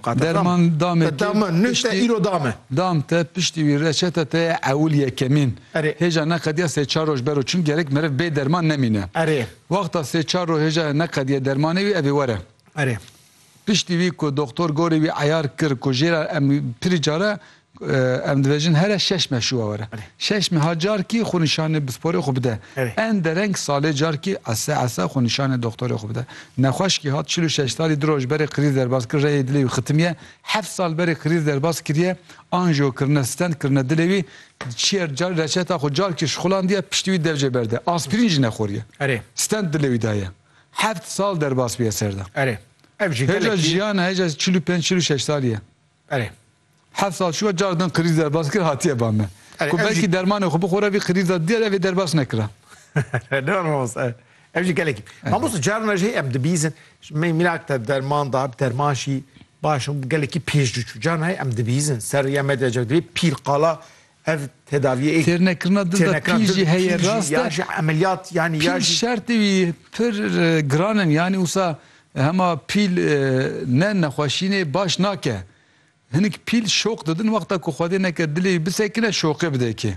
Derman damê te dame nû te îro dame. Dam te piştî wî reçete te ye ewil yekemîn. Erê. Hêja neqediya sê çar roj bero çim gerek meriv bê derman nemîne. Erê. Wexta sê çar roj hêja neqediye dermanê wî evê were. Erê. Piştî wî ku doktor gorî wî eyar kir ku jêra em pirî care Em dibêjin here şeş me şûwa were. Şeş me ha carkî xwe nîşanê bisporê xwe bide. En dereng salê carkî ese ese xwe nîşanê doxtorê xwe bide. Nexweşkî hat çil û şeş salî du roj berê krîz derbas kir reyê dilê wî xitimiye. Heft sal berê krîz derbas kiriye anjiyo kirine stent kirine dilê wî çiyer car reçeta xwe carkî şixulandiye piştî wî dev jê berde. Aspirîn jî nexweriye. Stent dilê wî daye. Heft sal derbas bûye ser de. Hêja jiyan e hêja çil û pênc çil û şeş salî ye. Erê. Heft sal çû ya car din qirîz derbas kir hatiye ba me. Erê Ku ev jî belkî dermanê xwe bixwere vî qirîza diyar ev ê derbas nekira. Ne rast e. Ev jî gelekî. Mamoste carna jî em dibîzin me mînak te derman da derman jî baş gelekî pêş diçû. Carna em dibîzin ser rêya medyacak dibê pîl qala Ev tedaviyê ê. Têrnekirina dil de pîl jî heye rast e. Pîl şertê wî pir giran in yanî wisa hema pîl ne nexweşînê baş nake. Hinik pîl şoq didin wexta ku Xwedê neke dilê wî bisekine şoqê bide kê.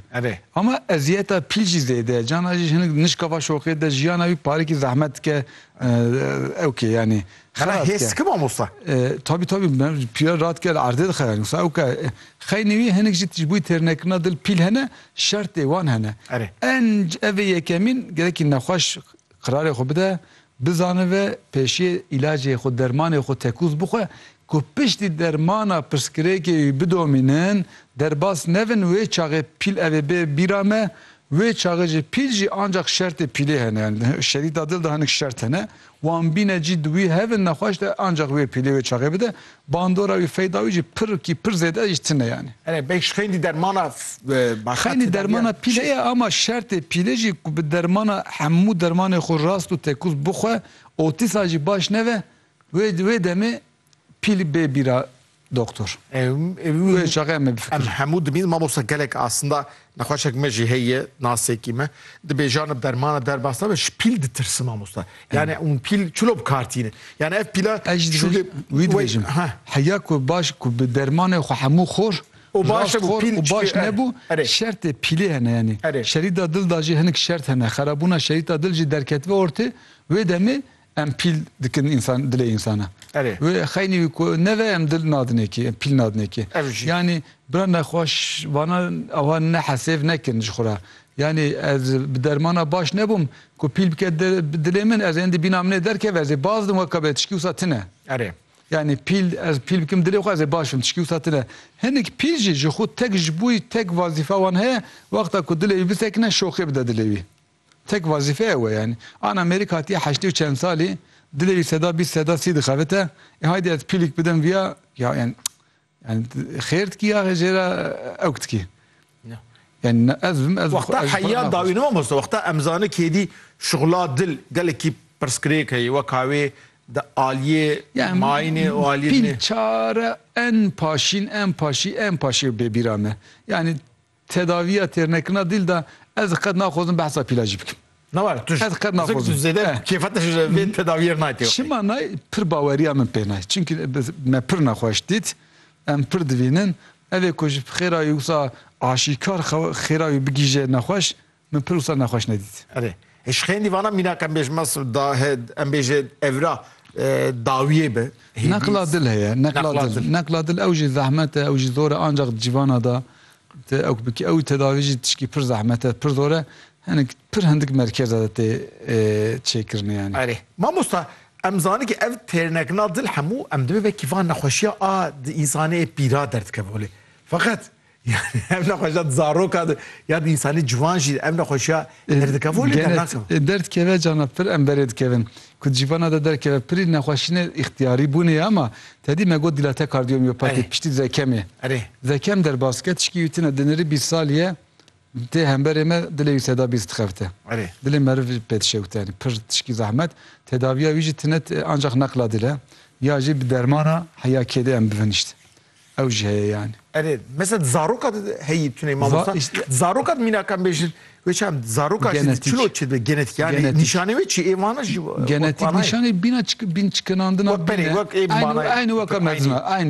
Ama eziyeta pîl jî zêde ye. Cana jî hinik nişka va şoqê de jiyana wî parekî zehmet dike. Ewkê yanî Xera hêz dike mamosta. Tabî tabî pîra radike li erdê dixe yani wisa ewke xeynî wî hinek jî ji bo têrnekirina dil pîl hene şertê wan hene. En ev ê yekemîn gelekî nexweş qirarê xwe bide bizanive pêşiyê îlacê xwe dermanê xwe tekûz bixwe ku piştî dermana pirsgirêkê wî bidomînin derbas nebin wê çaxê pîl ev ê bê bîra me Wê çaxê jî pîl jî ancak şertê pîlê hene yani şerîta dil de hinek şert hene wan bîne cî di wî hevin nexweş de ancak wê pîlê wê çaxê bide bandora wî feyda wî jî pir kî pir zêde jî tine yani. Erê beyş xeynî dermana başka Xeynî tedaviyan dermana pîlê çi? ye ama şertê pîlê jî ku bi dermana hemû dermanê xwe rast û tekûz bixwe otîsa jî baş neve wê wê demê Pîl bê bîra doktor. Wê çaxê em ê bifikirin. Em hemû dimînin mamosta gelek asinda nexweşek me jî heye nasekî me dibê janib dermana derbas nabe ji pîl ditirsin mamosta yanî hûn pîl çilo bi kar tînin yanî ev pîla Ez ji dibê wî dibêjim heya ku baş ku bi dermanê xwe hemû xor û baş xor û baş nebû şertê pîlê hene yanî şerîta dil da jî hinik şert hene xerabûna şerîta dil jî derketibe ortê wê demê Em pîl dikin însan dilê însana. Erê. Wê xeynî wî ku neve em dil nadinê kê, em pîl nadinê kê. Ev jî. Yanî bira nexweşvanan ava ne hesêv nekin ji xwe re. Yanî ez bi dermana baş nebûm ku pîl bike di dilê min ez ên di bîna min ê derkeve ez ê baz dim weka be tişkî wisa tune. Erê. Yanî pîl ez pîl bikim dilê xwe ez ê baş bim tişkî wisa tune. Hinek pîl jî ji xwe tek ji bo wî tek wazîfa wan heye wexta ku dilê wî bisekine şoxê bide dilê wî. Tek vazîfe ew e yanî. An Amerîk hatiye heştê û çend salî, dilê wî seda bîst seda sî dixebite, ê haydî ez pîlik bidim vîya, ya yanî yanî xêr dikî ya jê re ewk dikî. Yanî ne ez bim ez Wexta ez xwe re heya naxweş. dawî ne mamoste, wexta em zane kê dî şixula dil gelekî pirsgirêk heye weka wê di aliyê Yan mayînê û aliyê pîl nê. çare en paşîn en paşî en paşî bê bîra me. Yanî Tedaviya têrnekirina dîl de ez qet naxwazim behsa pîla jî bikim. Na were tu Ez qet naxwazim. Zek tu zêde Eh. kêfa te ji vê tedaviyê re nayê tê wextê. Çima nayê pir baweriya min pê nayê. Çimkî bi- me pir nexweş dît, em pir divînin, evê ku ji xêra wî wisa aşîkar xew- xêra wî bigihîje nexweş, Min pir wisa nexweş nedît. Erê. Ji xêndî vana mînak em bêjin mas da he em bêjin evra dawiyê bi. Neqla dil heye, neqla dil. Neqla dil ew jî zehmet e, ew jî zor e ancaq di cîvana da tu ew bikî ew tedavî jî tişkî pir zehmet e, pir zor e. Hinek pir hindik merkez e tê çêkirinê yanî. Erê. Mamosta em zanîn kî ev têrnekna dil hemû em divê vekî van nexweşiya a di însanê pîra derdikeve holê. Feqet Yani ev nexweşiya di zaroka de ya di însanî ciwan jî ev nexweşiya derdikevû lê dernakevin. Gene derdkeve cana pir em berê dikevin. Ku di cîvana de derkeve pirî nexweşînê îxtiyarî bûnê ye ama tedî me got dîlate kardiyomîyopatî piştî di ve kemê. Ve kem derbas dike tişkî wî tune di nirî bîst salî ye tê hemberê me dilê wî seda bîst dixebite. Dilê meriv jî pê dişewite yanî pir tişkî zehmet. Tedaviya wî jî tune ancax neqla dil e ya jî bi dermana heya kêdê em bivinişt. ew jî heye yani. Erê mesela di zaroka de heyî tunê mamosta di zaroka de mînak em bêjin wê çi em zaroka jî çilo çi dibe genetik yani nîşanê wê çi ê vana jî genetik nîşanê bîna bîn çikinandina bîne aynû weke mezin e aynî